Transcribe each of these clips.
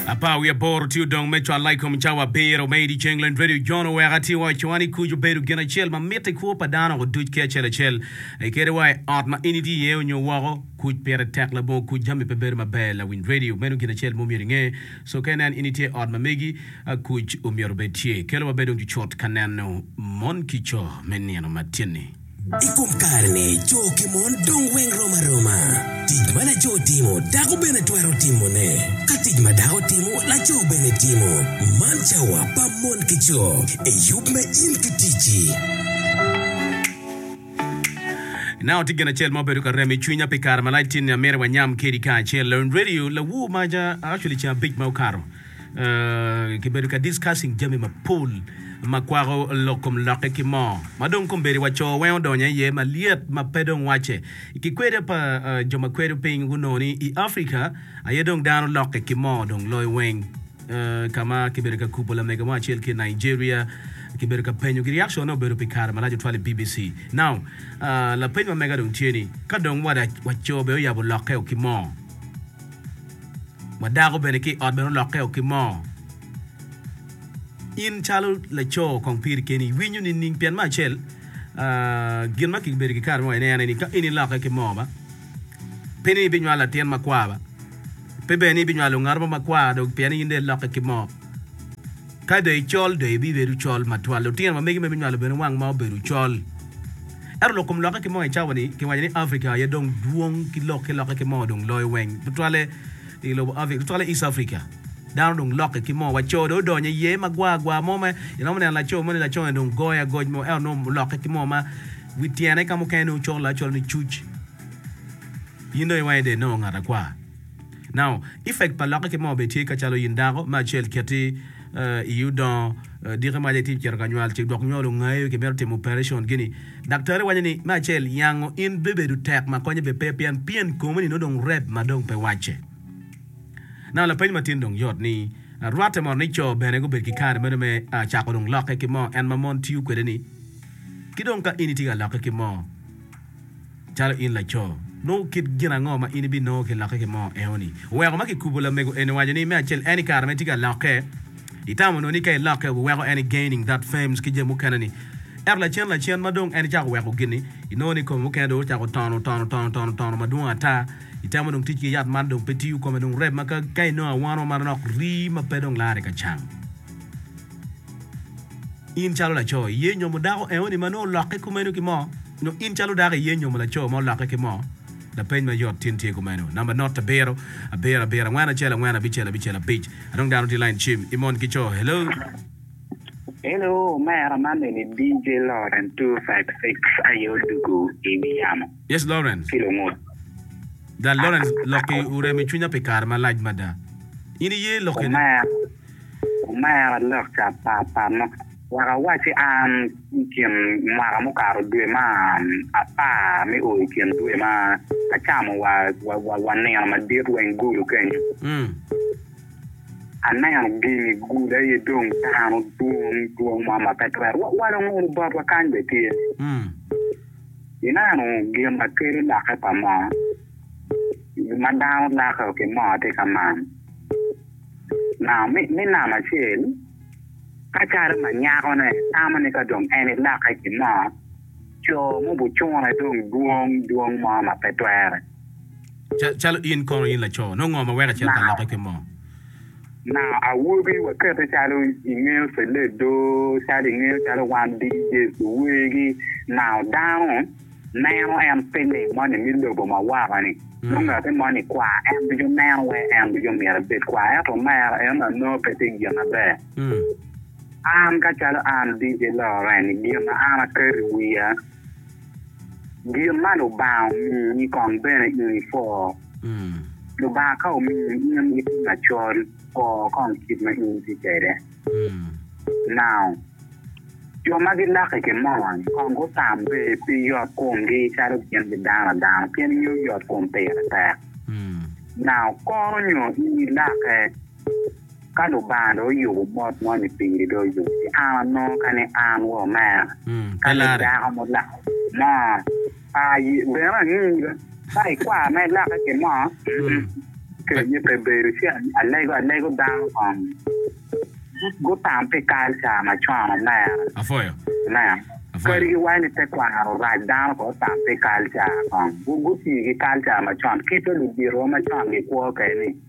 Apar wiye aboro tye odong me cwalla i kom cawa abiro me idyeceng leny redio Jon oweko atir wa i cowa ni kuc obedo gin acel ma mitte i kwo pa dano oduc ki acel acel. I kadi wa i ot ma in itye iye onyo woko, kuc pire tek labongo kuc jami pe bedo maber. Lawiny redio meno gin acel ma omyero inge so ka inen in itye i ot ma megi, kuc omyero obed tye. Kelo wa bed dong cucut ka neno mon ki co me nino matini. I kom kare-ni, co ki mon dong weng rom aroma. Tic ma laco timo, dako bene twero timone. Ka tic ma dako timo, laco bene timo. Man cawa pa mon ki co. Eyub me in ki ticci. I nanga tye gin acel ma obedo ka remo i cwinya pi kare malac, tye ni amyero wanyam kedi kacel. Lawiny Radio, Lawu ma ja, actually ceng abic ma okato, kibedo ka discussing jami mapol ma kwako lok kom lokke ki mo ma dong kombeddi wa co weng odonyo iye ma lyet ma pe dong wacce. I kikweda pa jo ma kwedo piny gunongo ni i Africa aye dong dano lokke ki mo dong loyo weng ka ma kibedo ka kubo lamego mo acel ki i Nigeria kibedo ka penyogi reaction ne obedo pi kare malac otwal i BBC. Now lapeny ma mega dong tye ni ka dong wa co bene oyabo lokke o ki mo ma dako bene ki i ot bene olokkeo ki moo. In calo laco kong piri keni iwinyo nining? Pien me acel, gin ma kibedo ki kare mo iye en aye ni ka in ilokke ki moo ba, pe ni ibinywalo latin makwar ba, pe bene ni ibinywalo ngat mo makwar dong pien in dong ilokke ki moo. Ka dong icol, dong ibibedo col matwal. Lutino ma megi ma ibinywalo bene wang ma obedo col. Ento lok kom lokke ki moo i cawa ni kiwaco ni Africa aye dong dwong ki lok ki lokke ki moo dong loyo weng tutwalle i lobo Africa tutwalle East Africa. Dano dong lokke ki moo wa co dong odonyo i ye ma gwar gwar mo ma iromo neno laco mo ni laco ni dong goyo agoc mo ento nongo olokke ki moo ma wi tyene ka mukene nongo colo acolo ni cuc in dong iwange dong inongo ngat akwar. Now, effect pa lokke ki moo bene tye ka calo in dako me acel keti iyi odongo diki maca itye cito ka nywal ci dok nywal ongayo ki mito timo operation gini daktari waco ni me acel yango in bebedo tek ma konye bene pe pien pien komi ni nongo dong rep ma dong pe wacce. Now lapeny ma tin dong yot ni rwate mono ni co bene gubedo ki kare meno me cako dong lokke ki moo en ma mon tiyo kwede ni ki dong ka in itye ka lokke ki moo Calo in laco, nongo kit gin ango ma in ibinongo ki lokke ki moo eoni? Oweko ma kikubo lamego eni waco ni me acel en i kare ma itye ka lokke, itamo nongo ni ka ilokke obiweko en i gaining that fames ki jami mukene ni. Ento lacen lacen ma dong en icako weko gini, inongo ni kome mukene dong ocako tono tono tono tono tono madwong ata. Itemo dong tic ki yat man dong pe tiyo kome dong rep ma ka ka inongo awano ma manonok rii ma pe dong lare ka cam. In calo laco, iye inyomo dako eoni ma nongo olokke kumeno ki moo? Nyo in calo dako iye nyomo laco ma olokke ki moo? Lapeny ma yot tin tye kumeno. Number not abiro, abiro, abiro, angwen, acel, angwen, abicel, abicel, abic. Adong dano tye lain cim. I mon ki coo. Hello. Hello omera man eni DJ Lawrence two five six aye odwogo i wi yamo Yes Lawrence. ki lungut. Gal Lawrence lokki orem i cwinya pi kare malac mada. In iye lokke ne? Omera, omera lokka pa pa mo. Wek awacci an, i kin mwaka mukato dwe ma apar me o i kin dwe ma acamo wa nino madit wa Engulu kenyo, aneno gini gule aye dong dano dwong dwong mo ma pe twero wawalo ngolo botwa kany bene tye. Ineno gin ma kelo lokke pa moo ma dano loko ki moo tye ka man nam me nam acel. Ka calo ma nyakone tamo ni ka dong en elokke ki mo, co mubicune dong dwong dwong mo ma pe twere. Ca, calo in kono, in laco, nongo ngo ma weko acito ka lokke ki mo? Na, awobi, wakete calo ingeyo cele do, calo ingeyo calo wan dii Yecu wegi nao dano. neno en pinni moni mi lobo ma woko-ni, nongo ngati moni kwar, en ducu neno wek en ducu myero ebed kwar, ento omero en anongo pe tye gin aber. An ka calo an DJ Loreny, gin ma an aketo i wiya, gin ma Lubanga omiyi kong bene in ipwo. Lubanga ka omiyi in itye macol, pwo kong kit ma in itye kwede. Now, jo ma gilaki ki mony kong gutambe pi yotkomgi calo gin gidano dano, pien ingeyo yotkom pire tek. Now, kono nyo in ilake, ka Lubanga dong oyubo mot moni piri, dong oyub ki an anongo, kadi an wa omera, kadi dako mulako mo. Aye bene angeyo ka i kwar ma ilokke ki mo, kenye pe bedo ci alego alego dano kong gutam pi kalca macon omera. Ineno? Kadi giwaco ni tekwaro orac, dano kong otam pi kalca kong, gutii ki kalca macon, kit ma luditowa macon gikwo kwede-ni.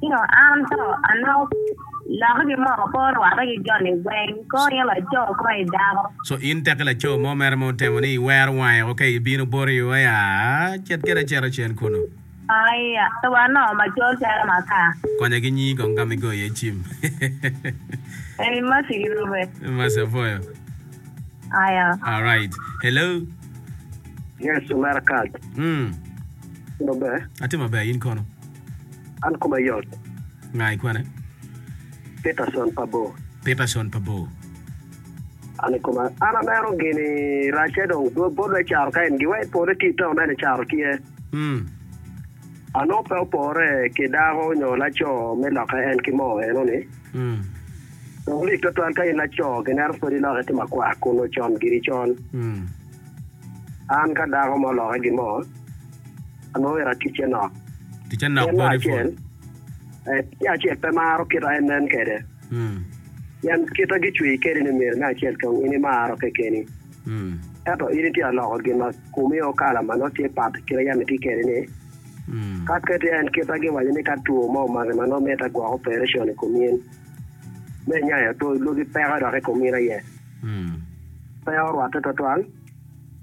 Pingo an to anongo loko ki moko kor rwatte ki joni weng kor in laco kor i dako. Co in teki laco mo mere ma otemo ni iwero wange o ka ibino boti o ya cet kede aceto cen kunu. Aia to wanongo macol calo makar. Konya ki nyi kong kama igoyo iye cim. Eni Mercy ki Rube. Mercy apoyo. Aia. Alright. Hello. Yes omera Kaz. Mm. Itimo maber? Atye maber in kono? An koma yot. Nga i kwene? Peterson pa bor. Peterson pa bor. An i koma. An aneno gini racce dong bot wek caro ka en gi wek pole tye itaun ene caro tye. Mm. Anongo pe opore ki dako nyo laco me loke en ki moo eno ni. Mm. Dong lik twatwal ka in laco ginero pwod iloke ki makwar kun ocon giri col. Mm. An ka dako mo oloke gi moo. Ango myero aticce nok? Ticce nok body full. Tye acel pe maro kit ma en nen kwede. Pien kit ma gicweyi kwede ni myero me acel kong in imaro kekeni. Ento in itye ka loko gin ma komi o kala ma nongo tye pat ki kit ma yam itye kwede ni. Ka keti en kit ma giwaco ni ka two mo omaki ma nongo mitte gwok operecon i kom in, me nya aye otwo lwogi peke dok i kom in aye. Pe orwatte twatwal.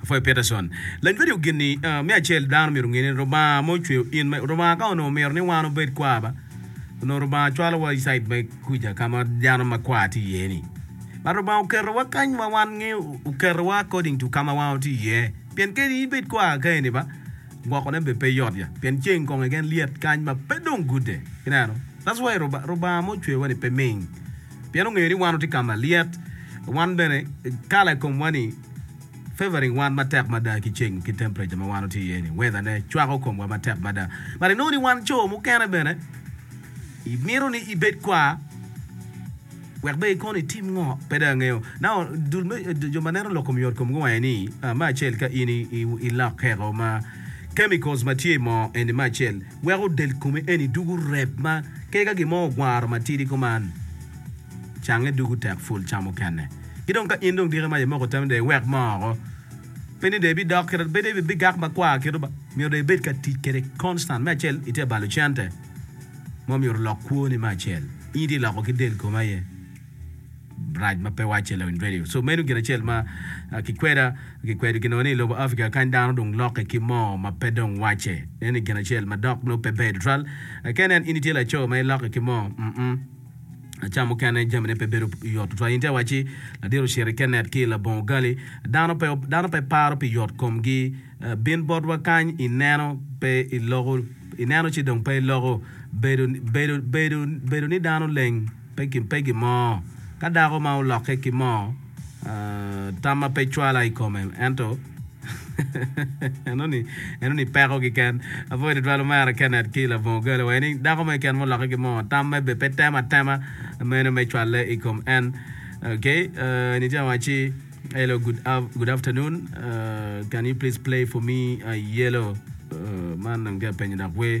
Pwopoi Peterson, lanywado gin ni, Me acel, dano myero onge ni Lubanga ma ocweyo in ma, Lubanga ka onongo mito ni wan obed kwa ba, onongo Lubanga cwalowa i cait me kuca ka ma dano makwar tye iye ni. But Lubanga oketowa kany ma wan nge, oketowa according to ka ma wan watye iye. Pien kadi in ibed kwa ka eni ba, gwokone bene pe yot ya, pien ceng kong keken lyet kany ma pe dong gude. Ineno? That's why Lubanga, Lubanga ma ocweyowa ni pe ming, pien ongeyo ni wan watye ka ma lyet, wan bene kala i komwa ni, Favoring wan matek mada ki ceng ki temperature ma wan watye iye ni, weather ne cwako komwa matek mada. But inongo ni wan co mukene bene imito ni ibed kwar wek be ikono itim ngo pe dong angeyo. Now dul me jo ma neno lok kom yot kom gi wange ni me acel ka in ilok keko ma chemicals ma tye imoo eni me acel weko del komi eni dugu rep ma kega gimo ogwaro matidi kuman. cange dugu tek pul ca mukene. Ki dong ka in dong diki ma imoko tammi dong iwek moo oko, pe ni dong ibidok kit, pe dong ibigak makwar kit, myero dong ibed ka tic kede constant. Me acel itye balo cente ma myero olok kwoni, me acel in itye loko ki del komi aye rac ma pe wacce lawiny radio. So meno gin acel ma kikweda kikwedo ginongo ni ilobo Africa kany dano dong lokke ki moo ma pe dong wacce. Meno ni gin acel ma dok nongo pe ber tutwal. Ka inen in itye laco ma ilokke ki moo, mm. Aca mukene jamine pe bedo yot tutwal. In te wacci ladiro Ceri Kenneth ki labongo Gali, dano pe, dano pe paro pi yot komgi. Bin botwa kany ineno, pe iloko, ineno ci dong pe iloko. Bedo, bedo, bedo, bedo ni dano leng pe, pe gin mo. Ka dako ma olokke ki mo. Tam ma pe cwala i kome ento enoni enoni peko kiken. Apwoyo tutwal omera Kenneth ki labongo gale wa eni dako mo keken muloke ki moo tam me be pe temo atema meno me cwale i kom en. Okay, uh, eni tye waci hello good, av- good afternoon uh, can you please play for me uh, yellow uh, man dong tye apenyo dok wer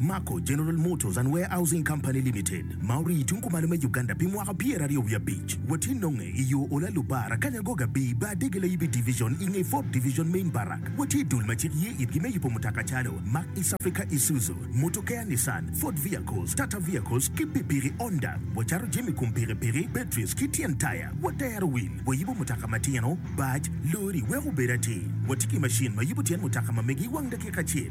Mako General Motors and Warehousing Company Limited ma orii tung kumalo me Uganda pi mwaka pyeraryo wiye abic watye nonge i yo Ola Lubar Akanya Goga Bii Bar Dege Layibi Division i nge Ford Division Main Barrack watye i dul ma cik ye itgi me yubo mutoka calo Mack East Africa Isuzu Motokea Nissan Ford Vehicles Tata Vehicles ki pikpiki Honda wacato jami kom pikipiki batteries ki tyen taya watero wil wayubo mutoka matino bac lori weko obed atir watye ki macin ma yubo tyen mutoka ma megi i wang dakika acel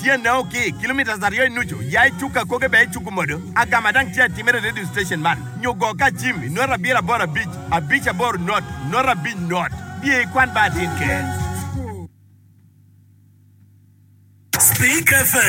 Tyenne o ki kilometres aryo i nucu, ya i cuk akoge bene icuku modo. Agama dang tye atimere i radio station man nyo go ka acim i nota abiro aboro abic, abic aboro not, not abic not. Biye i kwan ba atin ker. Speak FM.